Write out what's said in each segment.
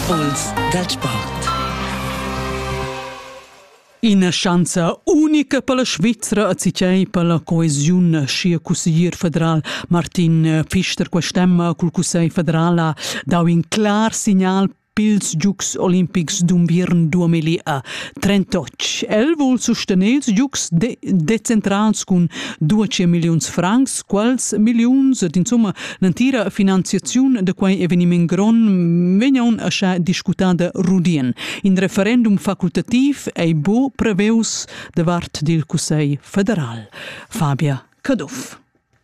Puls dal sport. Ina schanza unica per la Svizra a Cicei per la coesiun sia cusseglier federal Martin Pfister quest'emma cul Cussegl federala dau in clar signal pils Giugs olimpics d'unviern 2000 38. El vul sustener ils Giugs de decentrals cun 200 milliuns francs, quals milliuns ed insomma L'entira finanziaziun da quei eveniment gron vegnaun ascha discutada rudien. In referendum facultativ ei bo preveus da vart dil Cussegl federal. Fabia Caduff.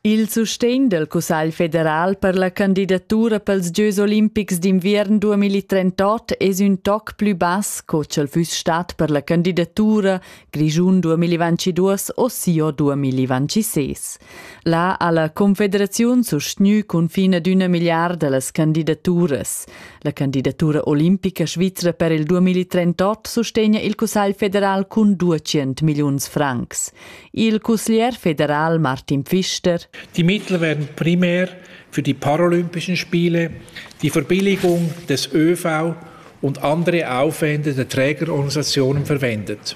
Il sustegn del Cussegl federal per la candidatura pels Gieus olimpics d'inviern 2038 es ün toc plü bass co ch'el füss stat per la candidatura Grischun 2022 o sio 2026. La ha la Confederaziun sustgnü cunfin ad üna milliarda las candidaturas. La candidatura olimpica svizra per il 2038 sustegna il Cussagl federal cun 200 milliuns francs. Il cusglier federal Martin Pfister Die Mittel werden primär für die Paralympischen Spiele, die Verbilligung des ÖV und andere Aufwände der Trägerorganisationen verwendet.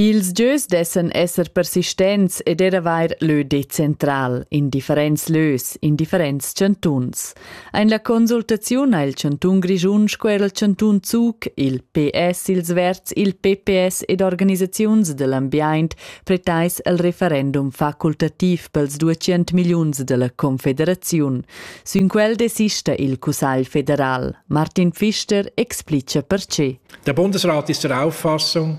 Ils gieus dessan esser persistents ed er avair lö decentral in differents lös in differents chantuns. Ein la consultaziun ha il chantun Grischun sco er il chantun Zug, il PS, ils Verts, il PPS ed organisaziuns dell'ambient pretais el referendum facultativ pels 200 milliuns della Confederaziun. Sün quel desista il Cussagl federal. Martin Pfister explica perché. Der Bundesrat ist der Auffassung,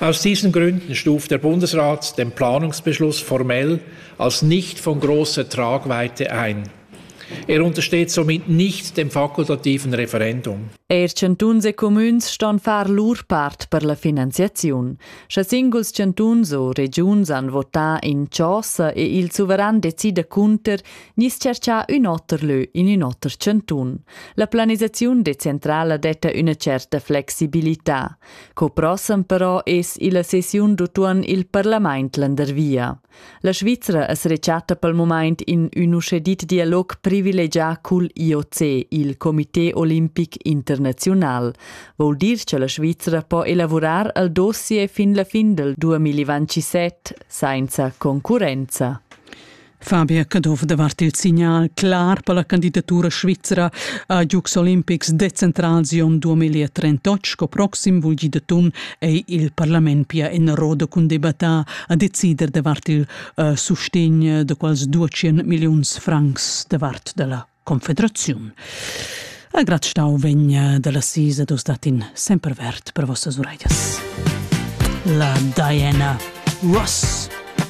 Aus diesen Gründen stuft der Bundesrat den Planungsbeschluss formell als nicht von großer Tragweite ein. Er untersteht somit nicht dem fakultativen Referendum. Er chantuns e comüns ston far lur part per la finanziaziun. Sche singuls chantuns o regiuns han votà in chosa e il suveran decida cunter, nis cerchà ün oter lö in ün oter chantun. La planisaziun decentrala detta üna certa flexibilità. Co prossem però es illa sessiun d'utuon il parlament landervia. La Svizra es rechatta pel mumaint in ün uschè dit dialog privilegià cul IOC, il Comité Olimpic Internaziunal. Vol dir cha la Svizra po elavurar al dossier fin la fin del 2027 sainza concurrenza. Fabio Caduff davart il signal clar per la candidatura svizra a Jux Olimpics de Centralsion 2038 sco proxim vul gi de tun ei il parlament pia en roda cun debatar a decider davart il uh, sustegn de quals 200 milliuns francs davart della confederazione. A grad stau vegna dalla sisa dos datin sempre vert per vossas uraias. La Diana Ross